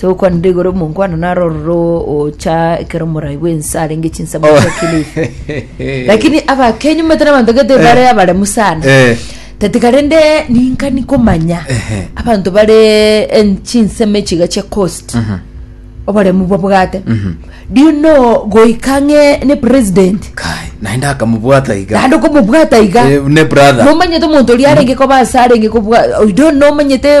Togokwanera igoro omonkwana naro ororo ocha ekero omorai bw'ense arenge chinsemo Oh. ase Kilifi. lakini abakenyu mbete nabanto gete bare abaremu sana Eh. tatika rende ninkani komanya Ehe. abanto bare en- chinsemo echiga chia coast oboremu babwate do you know goika ng'e ne president kai naende akamobwata iga naende okomobwata iga Eh, ne brother momanyete omonto oria arenge koba ase arenge kobwa you don't know omanyete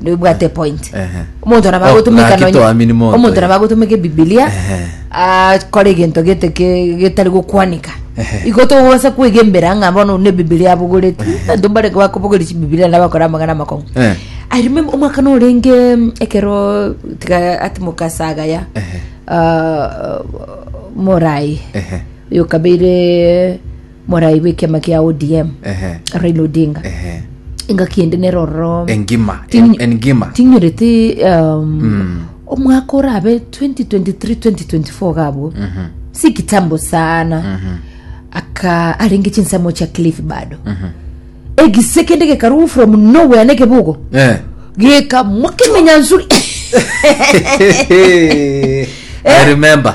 ndoibwate point Ehe. omonto nabo Oh, agotumika gaki nonye- toamini monto, omonto eh. nabo agotumika ebibilia Ehe. akore egento gete ke- getari gokwanika Ehe. igo togobasa kwegembera ng'a bono ne ebibilia abogoreti abanto mbare bakobogoria chibibilia nabo bakore amang'ana amakong'u Eh. i remember omwaka norenge mm, ekero tiga atimoka saga ya Ehe. ah, morai Ehe. oyo kabeire Morai bw'ekiama kia ODM Ehe. Raila Odinga Ehe. engaki ende nero ororo Engima. Tinyi- En- Engima. tinyorete um, omwaka orabe 2023-2024 gabwo si kitambo sana aka arenge chinsemo chia cliff bado egise kende gekarugwa from nowhere nekebugo Eh. gekamwa kemenyansuri I remember.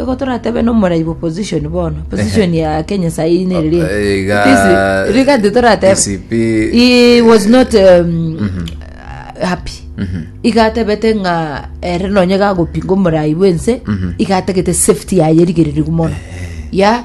Igo toratebe nomorai bw'opposition bono, opposition ya Kenya sahi nere ri. Eh, iga- It is- rigati toratebe. DCP He was not um, uh, happy. Iga atebete ng'a ere nonye gagopinga omorai bw'ense, iga atagete safety yaye erigereriwe mono. Ya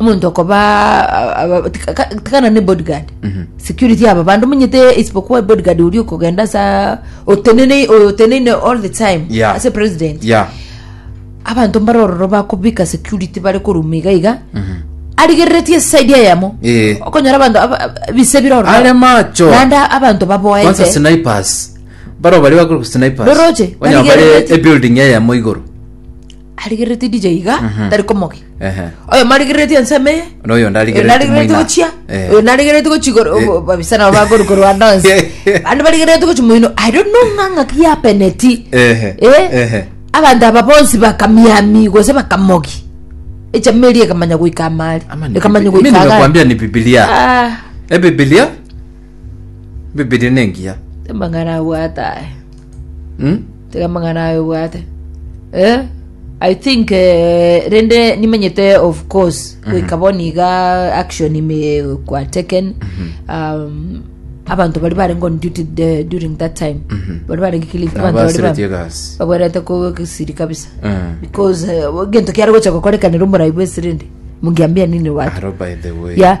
omonto okoba aba- tika- ka- tikana ne bodyguard security aba bandu munyete isipokuwa bodyguard uri okogenda sa otenene oteneine all the time Yeah. ase president ya abanto mbare ororo bakobika security bare koruma iga iga arigereretie side eyemo Eh. okonyora abanto aba- aba- bise bire ororo are macho naende abanto kwanza baboete snipers baro bari bakora snipers Roroche, Onya bari barigereretie. ebuilding eyemo igoro arigereretie ndije iga tari komogia Ehe. oyo marigereretie nseme eye Na oyo onde arigereretie narigereretie moina. gochia Eh. oyo narigereretie gochi Eh. babisa nabo bakoru korwa nonse bande barigereretie gochi moino i don't know ng'a ng'aki yapeneti Ehe. Eh? Ehe. abanto aba bonsi bakamiami gose bakamogi echama eria ekamanya goika amari Ama ni ekamanya Biblia. Mimi goika agari nimekuambia ni bibilia Ah, e bibilia bibilia nengiya temang'ana abwatae Hmm? Tega amang'ana aya obwate. Eh, I think eh, rende nimenyete of course goika bono iga action ime kwa taken um, abanto bari barenge on duty the- during that time bari barenge kilifi abanto bari ba- Abasireti egasi. babwerete kogesiri kabisa Eh, because eh, gento kiare gocha gokorekanera omorai bwesirindi mungiambia nini watu Aro by the way. ya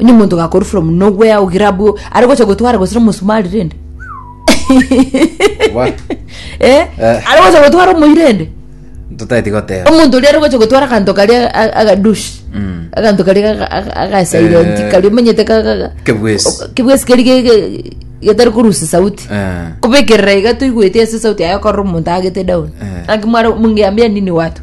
Onye omonto gakori from nowhere ogira abwo are gocha gotwara gose omosumari rende. What? Eh? Eh. Are gocha gotwara omoyi rende. Totaeti goteba. Omonto oria are gocha gotwara akanto karia a- agadushi. Mm. Akanto karia aga- aga- agasilent Eh. karia omanyete ka- ka- ka- Kebwesi. o- kebwesi keri ge- ge- getari korusa sauti. Eh. Kubekerera iga toigwete ase sauti yaye okorora omonto agete down. Eh. Akimwara mungeambia nini watu.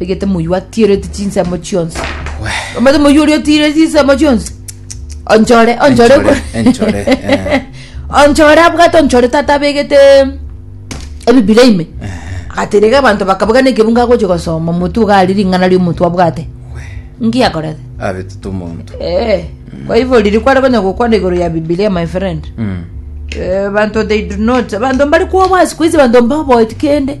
Egete moyio atireti chinsemo chionsi. Omate moyio oria otire chinsemo chionsi. Onchore, onchore. Enchore, enchore, eh. Onchore abwate onchore tata abegete ebibira ime. Agaterega abanto bakabuga nekebunga agochi gosoma omotu iga ari ring'ana ria omotu abwate. Nki akorete? Abetete omonto. Eh. Kwa hivyo riri kware konya gokwana igoro ya Biblia my friend. Mm. Eh, bantu they do not bantu mbari kwobwa siku hizi bantu mbaboeti kende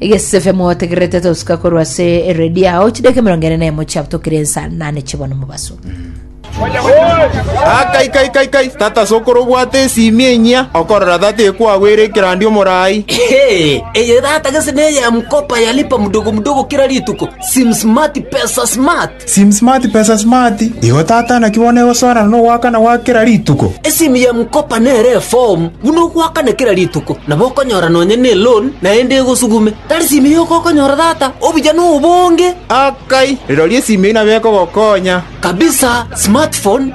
Egesefe motegererete tosuka korwa ase eredio yao chideka emerongo ene na emo chiabotokire ensa nane chibono mobaso. Ah, kai kai kai kai tata sokoro obwate esimi enyia okorora tata ekwagwere ekerandi omorai Ehe, eye tata gese neye ya mkopa ya lipa mdogo mdogo kila rituko, sim smart, pesa smart. Sim smart pesa smart igo tata naki bono egosoana nogoakana gwa kera rituko. Esimu ya M-Kopa nere efomu buna ogoakana kera rituko, nabo okonyora nonya neloan naende egosugume. Tari simu yoka okonyora tata, obuya nobonge. Akai, rirorio esimu eyio nabo ekogokonya. Kabisa, smartphone.